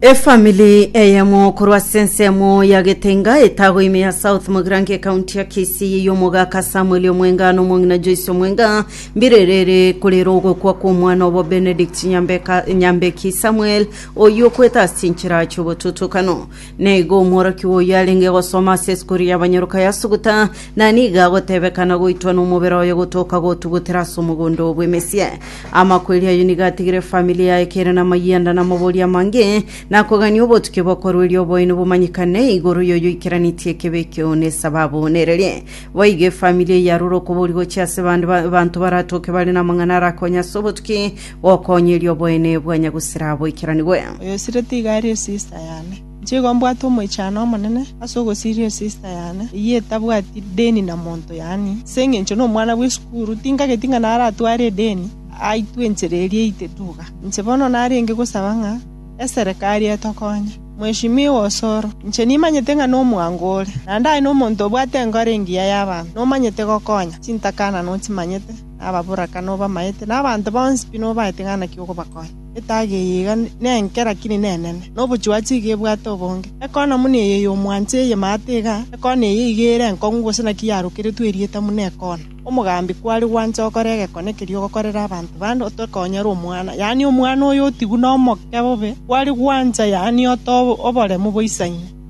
Efamili eyemo korwa ase ensemo ya Getenga etago ime ya South Mogirango ekaunti ya Kisii eyio omogaka Samuel Omwenga na omong'ina Joyce Omwenga mbirerere korera ogokwa kwa omwana obo Benedict Nyambeka Nyambeki Samuel oyio okwete ase chinchera chi'obotutukano. Na igo omworokigwa oyio arenge gosoma ase esukuru y'abanyoroka yasuguta, na nigo agotebeka na goitwa nomobere oye gotoka gotugutera ase omogondo oo bw'emesia. Amakweri ayio nigo atigire efamiri yaye kere namayanda na amabori amange, na kogania obotukia bw'okorueria oboino bomanyikane igoro y'oyoikeranetie ekebe ekio na esababu na ereria. Boigo efamiri eyio yarure okobori gochia ase bande ba- abanto baratoke bare namang'ana arakonye ase obotuki, gokoonyeria oboene bwa Nyagusera boikeranigwe. Oyosiretie iga aria esista yane. Inche igo mbwate omoichano omonene ase ogosiria esista yane, eyio etabwati deni na monto, yaani, ase engencho nomwana bw'esukuru, tinkageti ng'a naratware edeni aitwe enchera eria eite duga. Inche bono narenge gosaba ng'a eserekari etokonye. Mweshimiwa Osoro, inche nimanyete ng'a nomwango ore, naende aye nomonto obwate enkoro engiya y'abanto, nomanyete gokonya, chintakana nochimanyete. na ababoraka, na obamaete, na abanto bonsi pi nobaete ng'a naki ogobakonya. Etaage eye iga nenke, lakini nenene, na obochuachi iga ebwate obonge. Ekona muna eye y'omwancha eye maate iga, ekona eye iga ere enkong'u gose naki yarokeretwe erieta muna ekona. Omogambi kware gwancha gokora egekone ekeria ogokorera abanto bande, otokoonyere omwana, yaani omwana oyo otigwe nomoke bobe, kware gwancha, yaani ote oboremu boisaine.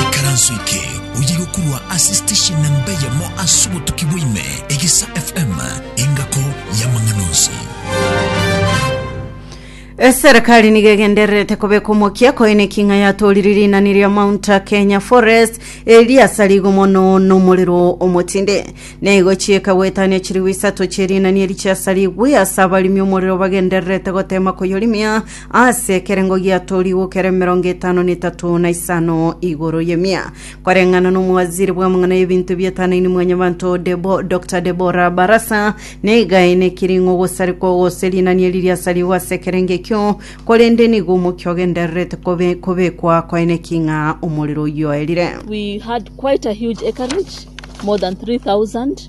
Ikaranso eke oyiga korwa ase station namba eyemo ase obotuki bwa ime, Egesa FM, engako y'amang'ana onsi. Eserekari nigo egendererete kobeka omokia koine king'a yatorire rinani ria Mount Kenya Forest eriasa rigo mono nomorero omotinde. Neigo chieka goetania chirigu isato chi'erinani eri chiasarigwe ase abarimi omorero bagendererete gotema koyorimia ase ekerengo giatorigwe kere emerongo etano na etato na isano igoro yemia koreng'ana n'omowaziri bw'amang'ana y'ebinto biatanaini mwanyabanto Debo, dr debora barasa negae nekiring'o gosarikwa gose rinani eri riasarigwe ase ekerenge ekio korende nigo omokia ogendererete kobe, kobekwa koene king'a omorero oyio oerire We had quite a huge acreage, more than 3,000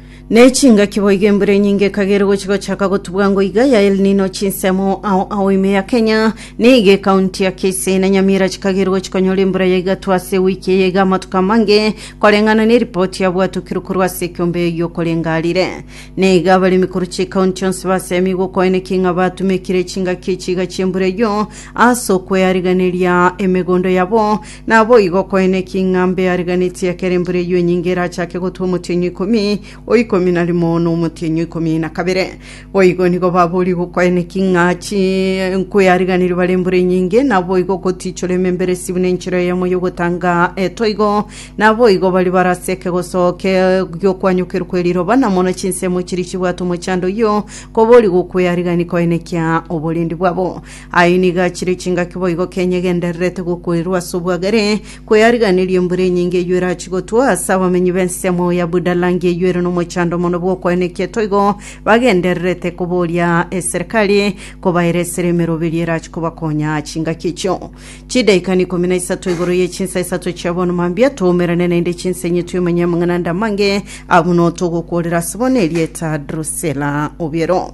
Ne chingaki boigo embura enyinge ekagera gochia gochaka gotubwa ngo iga ya El Nino chinsemo ao ao ime ya Kenya niga ekaunti ya Kisii na Nyamira chikagera gochia konyora embura ya igato ase ewiki eye iga amatuko amange koreng'ana ne ripoti yabwatokirwe korwa ase ekiombe eyio korengarire na iga abaremi korwa chikaunti onsi basemie gokoeneki ng'a batumekire chingaki echi iga chiembura eyio ase okweyariganeria emegondo yabo Naboigo koene ki ng'a mbe ariganitie ekero embura eyio enyinge erachake gotwa omotienyi o ikomi, o ikomi na rimo, na omotienyi o ikomi na kabere. Boigo nigo baborigo koene ki ng'a chi nkwe ariganirie bare embura enyinge, naboigo gotichora ememberesi buna enchera eyemo y'ogotanga etoigo, naboigo baria bare ase ekegoso ke gi'okwanyokerwa kwe riroba, na mono chinsemo chiria chibwate omochando oyio, koborigwa okwe arigani koene kia oborendi bwabo. Ayio nigo achire chingaki boigo Kenya egendererete gokoirwa ase obwagare, kweyariganirie embura enyinge eyio erachi gotwa ase abamenyi b'ensemo ya Budalangi eyio ere nomochando mono bw'okoena eketo igo bagendererete koboria eserekari kobaera esera emeroberio erachi kobakonya chingaki echio. Chidaika ni ikomi na isato igoro ye chinsa isato chia bono mambia toumerane naende chinsa enye twemanye amang'ana ande amange abwo notogokorera ase bono erieta Drusela obiero.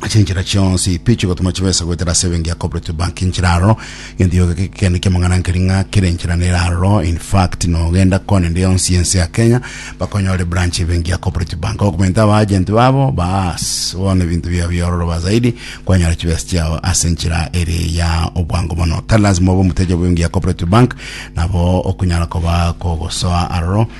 ase enchera chionsi pi chigotuma chibesa goetera ase ebenki ya cooperative bank enchera aroro gento yoka gekende kiamang'ana nkeri ng'a kera enchera nere aroro in fact nogenda kona ende yonsi ense ya kenya bakonyore branch ebenki ya cooperative bank okomenta aba agent babo baas bono ebinto biao biororo ba zaidi kwanyora chibesa chiao ase enchera ere ya obwango mono tari lazima obe omoteja bw'ebenki ya cooperative bank nabo okonyara koba kogosoa aroro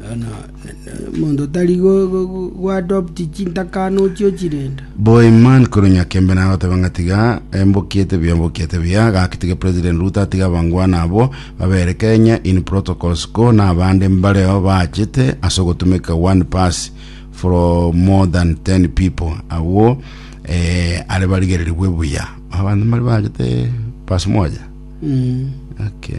Bono omonto tari go- go- go- goadopti chintakano ochio chirenda Boiman korwa Nyakembe naye agoteba ng'a tiga embokiete buya mbokiete buya gaki tiga President Ruto atige abangwana abwo babere Kenya in protocols ko nabande mbareo baachete ase ogotumeka one pass from more than 10 people agwo eh, are barigererigwe buya abanto mbari baachete pass moja Mm. okay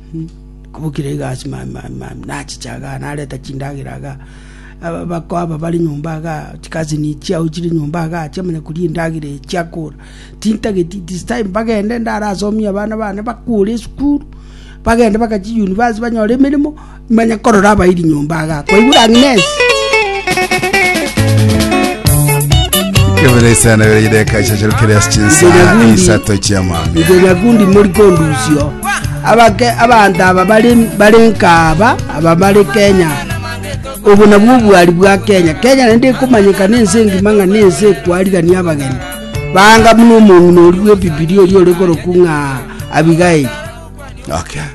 Kobokire iga ase maamamama, nachiche igaa, nareta chindagera igaa, ababako aba bare nyomba igaa, chikazini chiao chire nyomba igaa, chiamanya koria endagera eye chiakora. Tintageti it is time bagende ndarasomie abana bane bakure esukuru, bagende bagachie university banyore emeremo, manya korora abairi nyomba igaa. Kwaigure Agnes? Kebere sana bere ideka chachirukire ase chinsa Ndinagundi. isato chiamambia. Inche nyakundi mori kondusio. Abake abanto aba bare bare nkaaba aba bare Kenya. Obo nabwo obwari bwa Kenya. Kenya naende ekomanyeka na ense engima ng'a na ense ekwarigania abageni. Banga buna omong'ina oria bw'Ebibilia oria ore korokwa ng'a Abigaili. Okay.